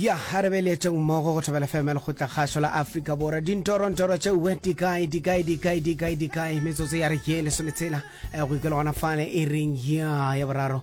ya a re beletšeng mmogo go thobela feme lekgotla kgašo la afrika borwa dintorontoro tšeue dikae dikae dikae dikae dikae metsotso ya re ke lesometshela eh, go ikela gona fale e reng ya ya boraro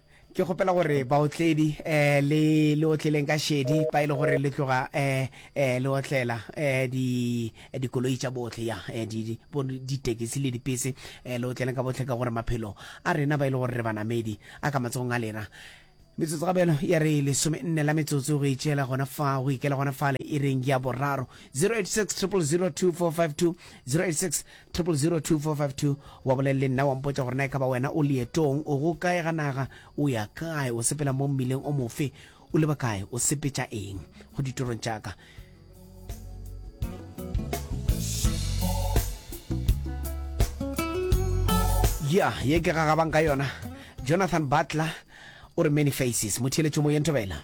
Ke kgopela gore baotledi um le le otleleng ka šedi pa e le gore le tloga um le otlela um di dikoloi tša bohle ya di bo ditekesi le dipese um le otleleng ka bohle ka gore maphelo a rena ba e le gore re banamedi a ka matsogong a lena metsotso ga bjalo ya re lesome nne la metsotso go itšela gona fa go ikela gona fale e reng ya boraro 086 002 452 086 000245 wa bolelele nna wa mpotša gore na e ka ba wena o leetong o go kae ga naga o ya kae o sepela mo mmileng o mofe o leba kae o sepetša eng go ditorong tša ka ya ye ke gagabang ka yona jonathan butler o re many faces motheeletšo moyeng thobela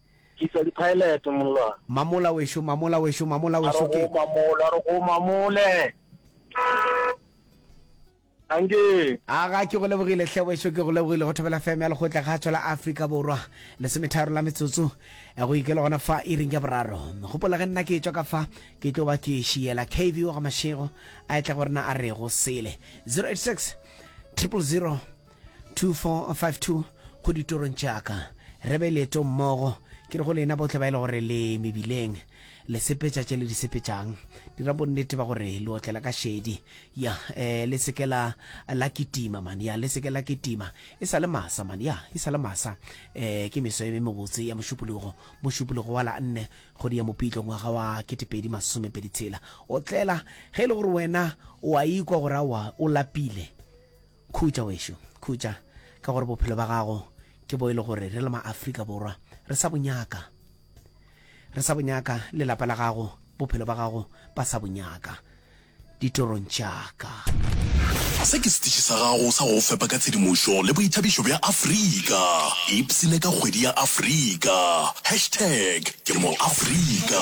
Tliša diphaelete, mollwana. Mamola wešo, mamola wešo, mamola wešo, ke. A re go mamole, a re go mamole. Anke. Aga, ke go lebogile, hle wešo, ke go lebogile. Go thobela FM ya Lekgotla ga Tšwa la Afrika Borwa, lesometharo la metsotso go e ke le gona fa iring ya boraro. Gopola ge nna ke tšwa ka fa, ke tlo ba ke šiela KV wa ga Mashego a etla go rena a re go sele. 086 triple 0. 2452 go ditorong tša ka re be leetong mmogo ke re go lena bohle ba e le gore le mebileng le sepetša tše le di sepetšang dira bonnete ba gore le otlela ka šedi ya um le seke la la kitima man ya le seke la kitima e sa le masa man ya e sa le masa um ke meso e me mebotse ya mošupologo mošupologo wa la nne kgodi ya mopitlo ngwaga wa ketepedi masomepedi tshela otlela ge e le gore wena o a ikwa gore awa o lapile Khutša wešo, khutša, ka gore bophelo ba gago ke bo e le gore re le ma-Afrika Borwa re sa bo nyaka. Re sa bo nyaka, le lapa la gago, bophelo ba gago ba sa bo nyaka ditorong tša ka. Se ke setiši sa gago sa go go fepa ka tshedimošo le boithabišo bja Afrika. Ipsine ka kgwedi ya Afrika. Hashtag ke mo-Afrika.